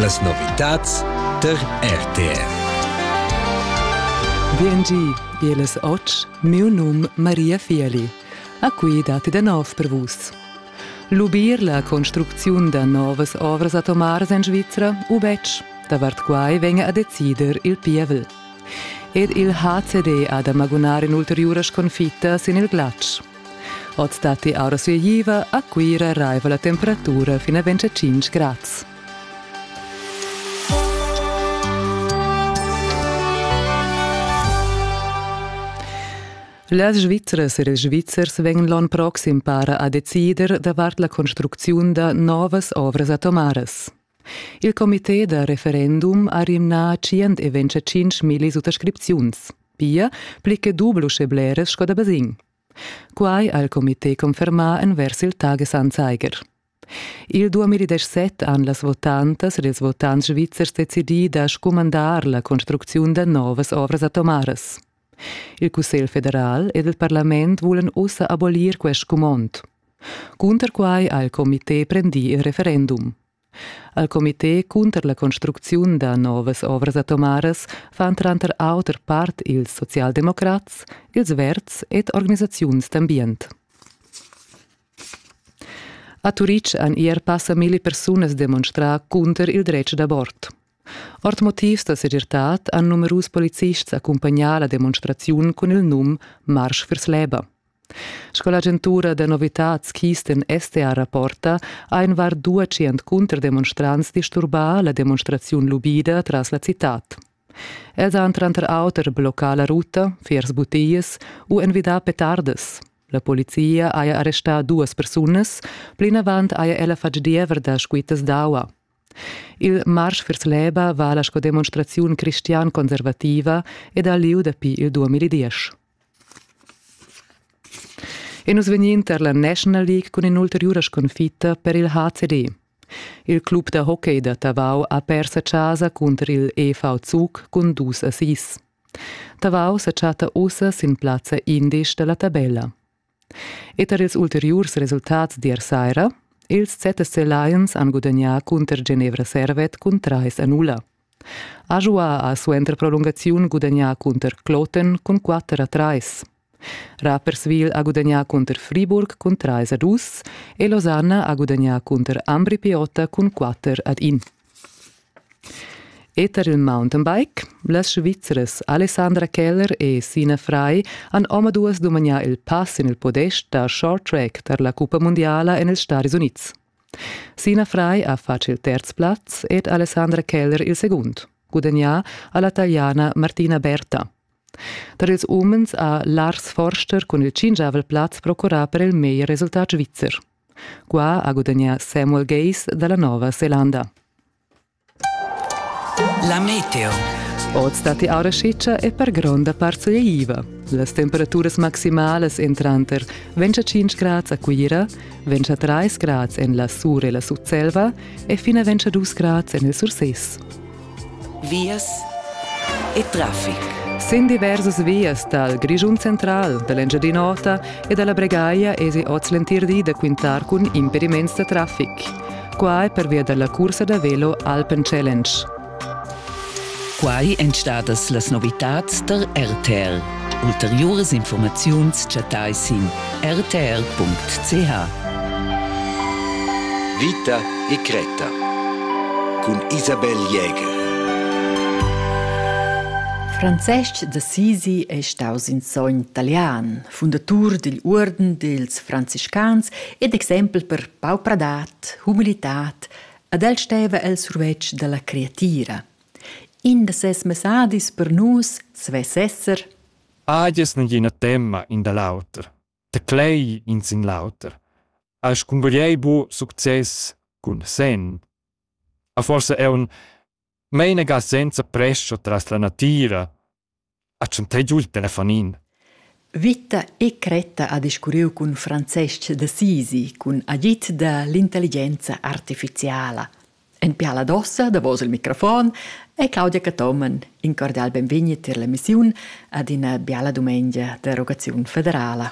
Las novitads tar RTV. Biengi, bieles ots, miu num Maria Fieli. A qui datti da nov per vus. Lubir la construcziun da novas ovras atomars en Svizra u betg, davart quai venga a decider il pievel. Ed il HCD ha da magunar in ulteriura sconfitta sin il glatsch. Oz datti aura sueiva a Cuira raiva la temperatura fin a 25 grads. Las Svizras e ils Svizzers vegn l'onn proxim para a decider davart la construcziun da novas ovras atomaras. Il comité da referendum ha rimnà tschient e vintatschintg milli suttascripziuns, pia pli che dubel uschè bleras sco da basegn. Quai ha il comité confermà envers il Tagesanzeiger. Il 2017 han las votantas ed ils votants svizzers decidì da scumandar la construcziun da novas ovras atomaras. Il Cussegl federal ed il parlament vulan ussa abolir quest scumond. Cunter quai ha il comité prendì il referendum. Al comité cunter la construcziun da novas ovras atomaras fan tranter auter part ils socialdemocrats, ils Verds ed organisaziuns d'ambient. A Turitg han ier passa milli persunas demonstrà cunter il dretg d'abort. Ord motivs da segirtad han numerus policists accumpagnà la demonstraziun cun il num Marsch viers l'Eba. Sco l'agentura da novitads Kisten STA rapporta, ha in var 200 cunterdemonstrants disturbà la demonstraziun lubida tras la citad. Els han tranter auter bloccà la ruta viers butias u envidà petardas. La polizia haja arrestà duas persunas, plinavant haja ella fatg diever da squittas d'aua. Il marsch vers l'EBA vala sco demonstraziun cristian-conservativa ed ha lieu dapi il 2010. E nus vegnin tar la National League cun in'ulteriura sconfitta per il HCD. Il club da hockey da Tavau ha pers a casa cunter il EV Zug cun dus assist. Tavau sa chatta ussa sin plazza indesch da la tabella. E tar ils ulteriurs resultats d'ier saira, ils ZSC Lions han gudagnà cunter Genevra Servet cun trais a nulla. Ajoua ha suenter prolungaziun gudagnà cunter Kloten cun quatter a trais. Rapperswil ha gudagnà cunter Friburg cun trais a dus e Losanna ha gudagnà cunter Ambri Piotta cun quatter ad in. E tar il mountainbike, las Svizras Alessandra Keller e Sina Frei han omaduas dumagnà il pass sin il podest da short track tar la cuppa mundiala en ils Staris Unids. Sina Frei ha fatg il terz plaz ed Alessandra Keller il segund, gudagnà a la taliana Martina Berta. Tar ils umens ha Lars Forster cun il tschingiavel plaz procurà per il meglier resultat svizzer. Qua ha gudagnà Samuel Gays da la Nova Zelanda. La meteo. Oz datti aura sciccia e per gronda part sogliaiva. Las temperaturas maximalas en tranter ventg a 5 grads a Cuira, ventg a 3 grads en la Sur e la Sutselva e fina ventg a 2 grads en il Surses. vias e traffic. Sin diversas vias dal Grischun central, da l'Engiadin'Ota e da la Bregaglia esi oz l'entir di da quintar cun impediments da traffic. Quai pervia da la cursa da velo Alpen Challenge. Quai èn stadas las novitads da RTL. Ulteriuras infurmaziuns chattais sin rtr.ch. Vita e Greta cun Isabel Jäger. Francesc d'Assisi è staus in sogn italian, fundatur digl Uorden dils franciscans ed exempel per paupradad, humilitat, ad el steva el survetsch dalla creatira. In da ses messadis per nus svess esser? Ag es nagina temma in da l'auter. Teclei in sin l'auter. As cumbagliei bu success cun sen. A forsa è un meinaga senza prescha tras la natira Ha tschantè giu il telefonin. Vita e Cretta ha discurriu cun Francesc d'Assisi cun agid da l'intelligenza artificiala. En piala d'ossa, davos il microfon, è Claudia Cathomen in cordial benvegni tier l'emissiun ad ina biala dumengia d'interrogaziun federala.